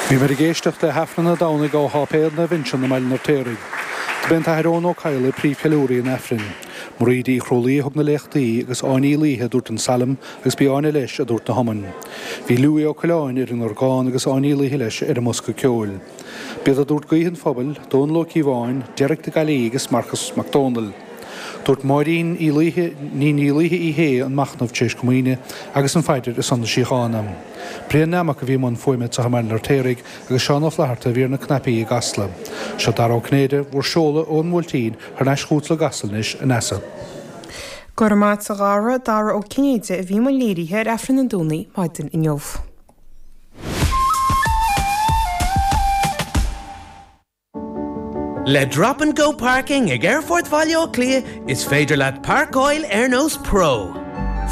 Bhíomar ag éisteacht le hAifreann an Domhnaigh ó Sháipéal Naomh Uinseann i mBaile an Fheirtéaraigh. Do b'é an tAthair Eoghan Ó Cadhla príomhcheiliúraí an Aifrinn. Mairéad Uí Chrualaoi a thug na léachtaí agus Áine Uí Laoithe a dúirt an Salm agus b'í Áine leis a dúirt na hiomainn. Bhí Louis Ó Coileáin ar an orgán agus Áine Uí Laoithe leis ar an mbosca ceoil. B'iad a dúirt Guí an Phobail, Dónal Ó Cíobháin, Derek de Gaillí agus Marcas Mac Dónaill. Dúirt Máirín Ní Niallaithe Uí Shé an machnamh tar éis Comaoine agus an phaidir ar son na síochána. Brian Nammock a bhí i mbun fuaime anseo i mBaile an Fheirtéaraigh agus Seán Ó Flaithearta a bhí ar na cnaipí i gCasla. Seo Dara Ó Cinnéide bhur seoladh ón mBuailtín thar n-ais chugat i gCasla anois, a Neasa. Go raibh maith agat a Dhara, Dara Ó Cinnéide a bhí i mbun léirithe ar Aifreann an Domhnaigh maidin inniu. Le Drop and Go Parking ag Aerfort Bhaile Átha Cliath is féidir leat parcáil ar nós pro.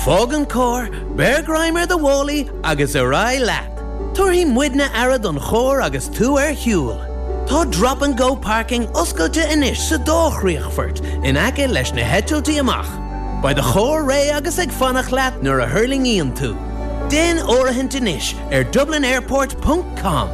Fág an carr, beir greim ar do mhálaí agus ar aghaidh leat. Tabharfaidh muidne aire don charr agus tú ar shiúl. Tá Drop and Go Parking oscailte anois sa dá chríochfort in aice leis na heitiltí amach. Beidh do charr réidh agus ag fanacht leat nuair a thuirlingíonn tú. Déan áirithint anois ar dublinairport ponc com.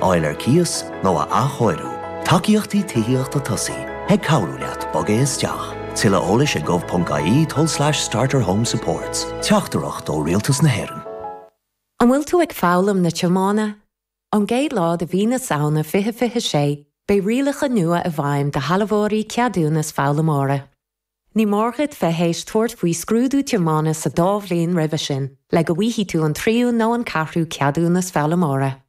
fháil ar cíos nó a athchóiriú. Tacaíochtaí Tithíochta Tosaigh ag cabhrú leat bogadh isteach. Tuilleadh eolais ag gov.ie tulslais starterhomesupports. Teachtaireacht ó Rialtas na hÉireann. An bhfuil tú ag foghlaim na tiomána? Ón gcéad lá de mhí na Samhna 2026, beidh rialacha nua i bhfeidhm do shealbhóirí ceadúnas foghlaimeora. Ní mór dhuit bheith théis tabhairt faoi scrúdú tiomána sa dá bhliain roimhe sin le go bhfaighidh tú an tríú nó an ceathrú ceadúnas foghlaimeora.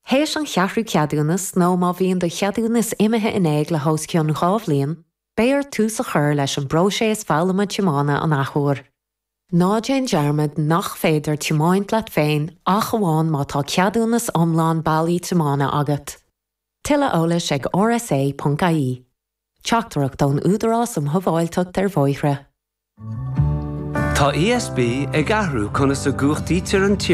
Théis an cheathrú ceadúnas nó má bhíonn do cheadúnas imithe in éag le hós cionn dhá bhliain, beidh ort tús a chur leis an bpróiséas foghlama tiomána an athuair. Ná déan dearmad nach féidir tiomáint leat féin ach amháin má tá ceadúnas iomlán bailí tiomána agat. Tuilleadh eolais ag rsa.ie. Teachtaireacht ón Údarás um Shábháilteacht ar Bhóithre. Tá ESB ag athrú conas a gcumhachtaítear an.